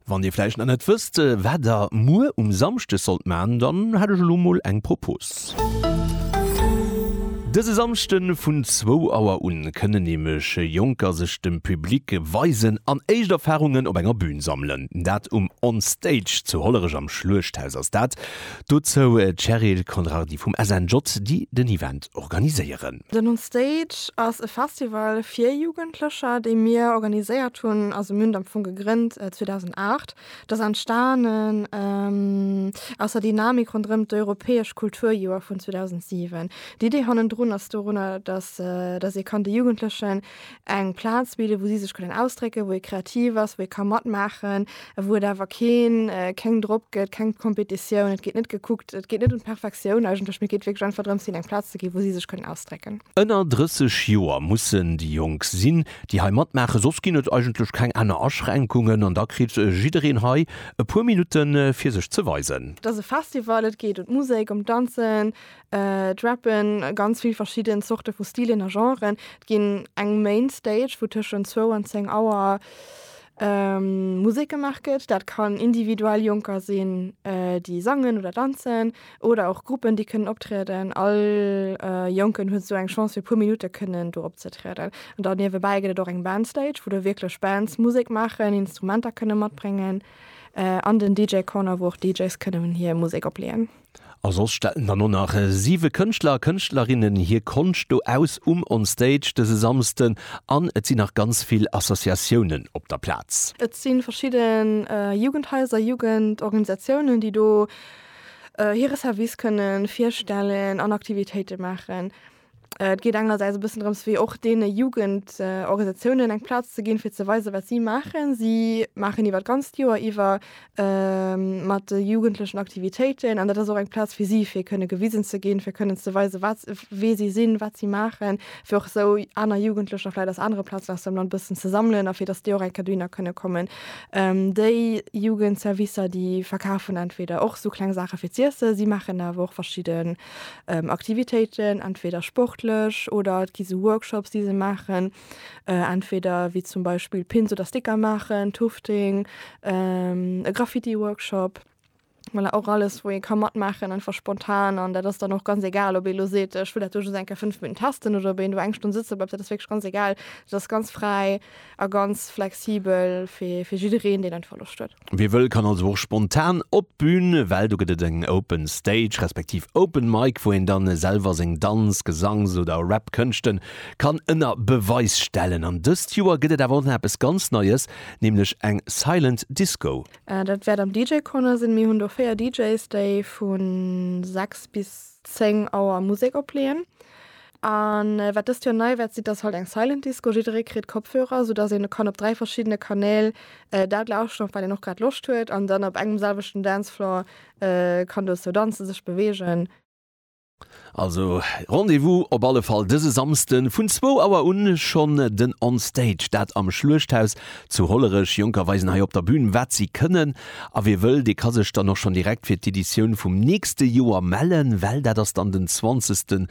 Wann Dir vläicht nach net wësst, wat Der muer um Samschdeg sollt maachen, dann hätt ech elo mol eng Propose. Dëse Samschde vun zwou Auer un kënnen nämlech Jonker sech dem Public weisen an éischt Erfarungen op enger Bün sammelen. Dat um On Stage zu Hollerech am Schluechthaus ass dat. Dozou d'Cheryl Conrardy vum SNJ, déi den Event organiséieren. Den On Stage ass e Festival fir Jugendlecher, dee mir organiséiert hunn, also mir hunn et am Fong gegrënnt 2008. Et ass entstanen aus der Dynamik ronderëm d'europäesch Kulturjoer vun 2007. D'Idee hannendrun ass dorunner, datt ee kann de Jugendlechen eng Plaz bidden, wou si sech kënnen ausdrécken, wou ee kreativ ass, wou ee ka matmaachen, wou et awer keen keng Drock gëtt, keng Competitioun. Et geet net gekuckt, et geet net ëm d'Perfektioun eigentlech, mee et geet wierklech einfach drëms, hinnen eng Plaz ze ginn, wou si sech kënnen ausdrécken. Ënner 30 Joer mussen déi Jonk sinn, déi hei matmaachen, soss ginn et eigentlech keng aner Aschränkungen an da kritt jiddereen hei e puer Minutte fir sech ze weisen. Et ass e Festival, et geet ëm d'Musek, ëm d'Danzen, Et rappen ganz vill verschidden Zorte vu Stilen a Genren. Et ginn eng Main Stage, wou tëschent zwou an zéng Auer Musek gemaach gëtt. Dat kann individuell Jonker sinn, déi sangen oder danzen, oder och Gruppen, déi kënnen optrieden. All Jonken huet sou eng Chance, fir e puer Minutte kënnen do opzetrieden. An da niewebäi gëtt et och eng Band Stage, wou da wierklech Bands Musek maachen, Instrumenter kënne matbréngen, an den DJ Corner, wou och DJs kënnen hir Musek opleeën. A soss stellen dann och nach siwe Kënschtler a Kënschtlerinnen hir Konscht do aus um On Stage dëse Samsden. An et sinn nach ganz vill Associatiounen op der Plaz. Et si verschidde Jugendhaiser, Jugendorganisatiounen, déi do hire Service kënne virstellen an Aktivitéite maachen. Et geet engersäits e bëssen drëms, fir och deene Jugendorganisatiounen eng Plaz ze ginn, fir ze weisen, wat si maachen. Si maachen iwwer d'ganzt Joer iwwer mat de Jugendlechen Aktivitéiten. An dat ass och eng Plaz fir si, fir kënne gewisen ze ginn, fir kënnen ze weisen, wat s', wie si sinn, wat si maachen. Fir och esou aner Jugendlecher vläicht aus anere Plazen aus dem Land e bëssen ze sammelen a fir datt déi och eng Kéier dohinner kënne kommen. Déi Jugendservicer, déi verkafen entweder och esou kleng Saache fir z'iessen. Si maachen awer och verschidde Aktivitéiten, entweder sportlech oder et gi sou Workshops, déi se maachen, entweder wéi zum Beispill Pins oder Sticker maachen, Tufting, e Graffiti-Workshop. Voilà, och alles, wou ee ka matmaachen, einfach spontan. An dat ass dann och ganz egal, ob ee elo seet, ech wëll dat do just eng Kéier fënnef Minutten testen oder ob een do eng Stonn sëtze bleift, dat ass wierklech ganz egal. Dat ass ganz fräi. A ganz flexibel fir jiddereen, deen einfach Loscht huet. Wie wëll kann also och spontan op d'Bün, well do gëtt et eng Open Stage respektiv Open Mic, wou een dann selwer seng Danz-, Gesangs oder Rap-Kënschten kann ënner Beweis stellen. An dëst Joer gëtt et awer och nach eppes ganz Neies, nämlech eng Silent Disco. Dat wäert am DJ Corner sinn. Mir hunn do 4 DJs, déi vu 6 bis 10 Auer Musek opleeën. A wat dëst Joer nei wäert sinn, t'ass halt eng Silent Disco, jidderee kritt Kopfhörer, sou dass een kann op 3 verschiddene Kanäl dat lauschteren, op wat een och grad Loscht huet, an dann op engem selwechten Dancefloor kann dozou danzen, sech beweegen. Also Rendez-vous op alle Fall dëse Samsden vun zwou Auer un schonn den On Stage, dat am Schluechthaus zu Hollerech. Jonker weisen hei op der Bühn wat si kënnen, a wie wëll, dee ka sech dann och schonn direkt fir d'Editioun vum nächste Joer mellen, well dat ass dann den 20.